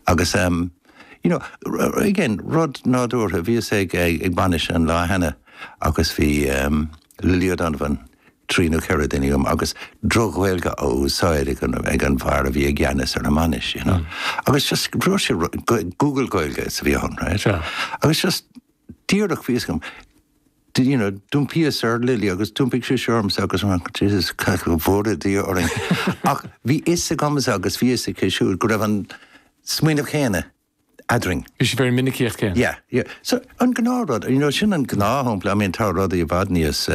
Agus em. you know, r, again, rud nádúrtha, bhíos ag, ag, ag bainis an lá cheana agus bhí em. Lily O'Donovan, trí nó ceithre duine liom agus droch-Ghaeilge á úsáid ag an, ag an bhfear a bhí i gceannas ar an mbainis, you know. Agus just rinne sé ru, Google Gaeilge is a bhí ann, right. Agus just díreach bhí fhios agam, do you know, d'iompaíos ar Lily agus d'iompaigh sise ormsa agus an raibh, Jesus, cad go bhfóire Dia orainn ach bhí fhios agamsa agus bhí fhios aici siúd go raibh an smaoineamh céanna eadrainn. Bhí sibh ar an minicíocht céanna? Yeah, yeah. So, an gnáthrud, you know, sin an gnáthshampla, I mean tá rudaí i bhfad níos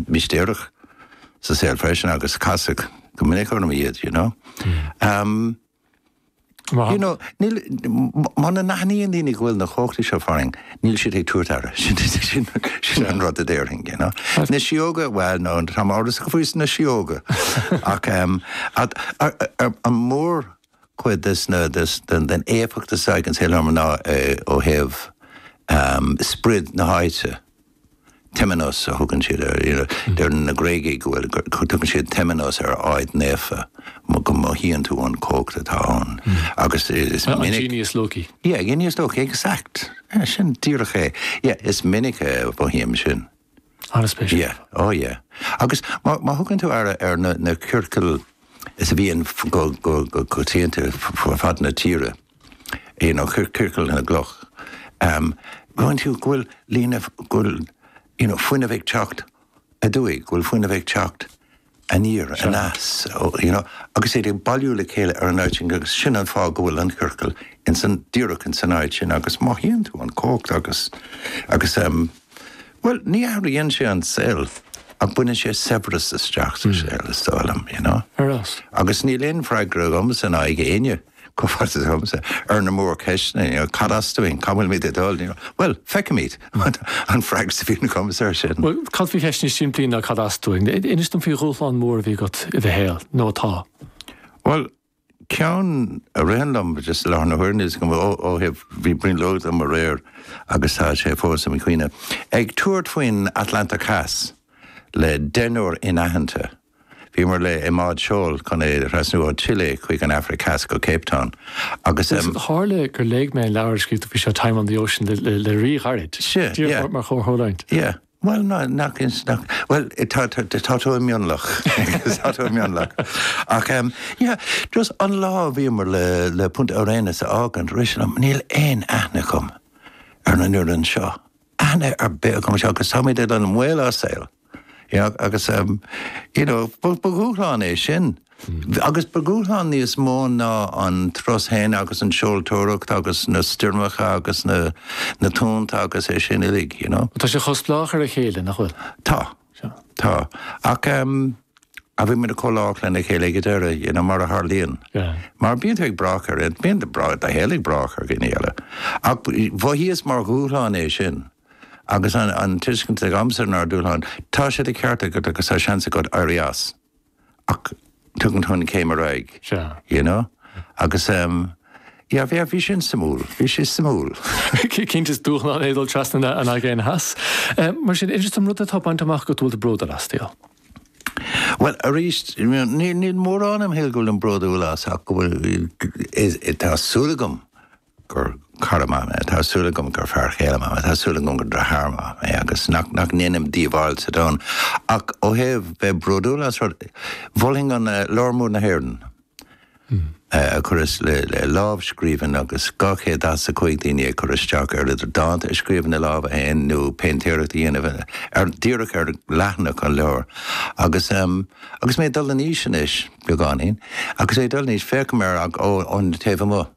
mistéireach sa saol freisin agus casadh go minic orm iad, you know. You know, níl, muna n-aithníonn daoine go bhfuil na cumhachtaí seo farainn, níl siad ag tabhairt aire. Sin, sin, sin an rud a déarfainn, you know. Na síóga, bhuel, no, táim amhrasach faois na síóga. Ach, ehm, at, ar, ar, an mór cuid des na, des, den, den éifeacht is ag an saol orm ná eh, ó thaobh, ehm, sprid na háite. Temenos a thugann siad air, you know, deireann na Gréagaigh go bhfuil, tugann siad Temenos ar áit naofa, mo go mothaíonn tú an cumhacht atá ann. Agus is minic, An genius loci. yeah, genius loci, exact, yeah, sin díreach é, yeah, is minic a mhothaím sin. Ana spéisiúil. Yeah, oh yeah. Agus má, má thugann tú aire ar na, na ciorcail is a bhíonn go, go, go coitianta fud fad na tíre, you know, ciorcal na gcloch, em, go bhfeiceann tú go bhfuil líne, go bhfuil, you know, fuinneamh ag teacht aduaidh, go bhfuil fuinneamh ag teacht aniar, aneas, you know, agus iad ag bailiú le chéile ar an áit sin agus sin an fáth go bhfuil an chiorcal ins an, díreach ins an áit sin agus mothaíonn tú an cumhacht agus, agus em, bhuel, ní athraíonn sé an saol ach baineann sé saibhreas isteach sa saol, is dóigh liom, you know. Agus níl aon freagra agam san aghaidh éinne. Comhghairdeas agamsa ar na mórcheisteanna, you know, cad as dúinn, cá bhfuilimid ag dul, you know. Bhuel, feicfimid, an freagra a bhíonn agamsa ar sin. Bhuel, cad faoi cheist níos simplí ná cad as dúinn? Inis dom faoi dhúshlán mór a bhí agat i do shaol, nó atá. Bhuel, ceann a ritheann liom just i láthair na huaire is go mba ó thaobh, bhí brionglóid agam aréir agus tá sé fós i mo chuimhne, ag tabhairt faoin Atlantach Theas le deichniúr anaitheanta. Bhíomar le i mbád seoil chun é a thrasnú ó Chile chuig an Afraic Theas go Cape Town agus em. Tharla gur léigh mé an leabhar a scríobh tú faoi seo Time on the Ocean le ríghairid, díreach mar chomhtharlúint. Yeah, bhuel ná nach ins nach bhuel tá tá tá tú i mionlach agus tá tú i mionlach ach em yeah just an lá a bhíomar le le Punta Arenas a fhágaint rith sé liom níl aon aithne agam ar an fhoireann seo. aithne ar bith agam anseo agus táimid uilig i mbaol ár saoil you know agus ehm you know ba dhúshlán é sin agus ba dhúshlán níos mó ná an turas féin agus an seoltóireacht agus na stoirmeacha agus na na tonnta agus é sin uilig you know. Tá sé chomh spleách ar a chéile nach bhfuil? Tá. Sea. Tá. Ach bhí muid chomh lách lena chéile ag an deireadh, you know, mar a tharlaíonn. Mar bíonn tú ag brath ar, bíonn do shaol ag brath ar dhuine eile. Ach mhothaíos mar dhúshlán é sin agus an tuiscint agamsa nár dúshlán, tá sé de cheart agat agus tá seans agat éirí as. ach tugann tú an céim ar aghaidh. Sea. You know? Agus ehm, yeah, bhí, bhí sin suimiúil, bhí sé suimiúil. Cinnte is dúshlán é dul trasna na, an Aigéan Theas. Ehm, mar sin, is an rud atá bainte amach agat go bhfuil tú bródúil as, Theo? Bhuel, arís, níl, níl mórán im shaol go bhfuilim bródúil as ach go bhfuil, is, tá súil agam gur cara maith mé. Tá súil agam gur fear chéile maith mé. Tá súil agam gur deartháir maith mé agus nach ndéanaim díobháil sa domhan. Ach ó thaobh bheith bródúil as rud, mholfainn an Leabhar Mór na hÉireann a chuireas le lámhscríbhinn agus 245 duine ag cur isteach air idir dánta a scríobh ina lámha féin nó péintéireacht a dhéanamh ar díreach ar leathanach an leabhair. Agus agus mé ag dul in aois anois, beagáinín, agus mé ag dul in aois, féachaim air ón taobh amuigh.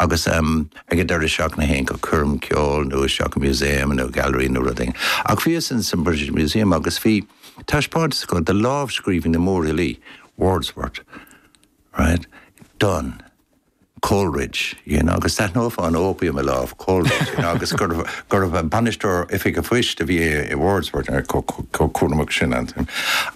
Agus ag an deireadh seachtaine théinn go coirm ceoil nó isteach i museum nó gallery nó rud éigin. Ach bhíos in san British Museum agus bhí taispeántas acu de lámhscríbhinní mórfhilí, Wordsworth, Dryden, Coleridge, you know, agus d'aithneofá an opium i lámh Coleridge, you know, agus gurbh bainisteoir oifig an phoist a bhí i Wordsworth, chomh cúramach sin.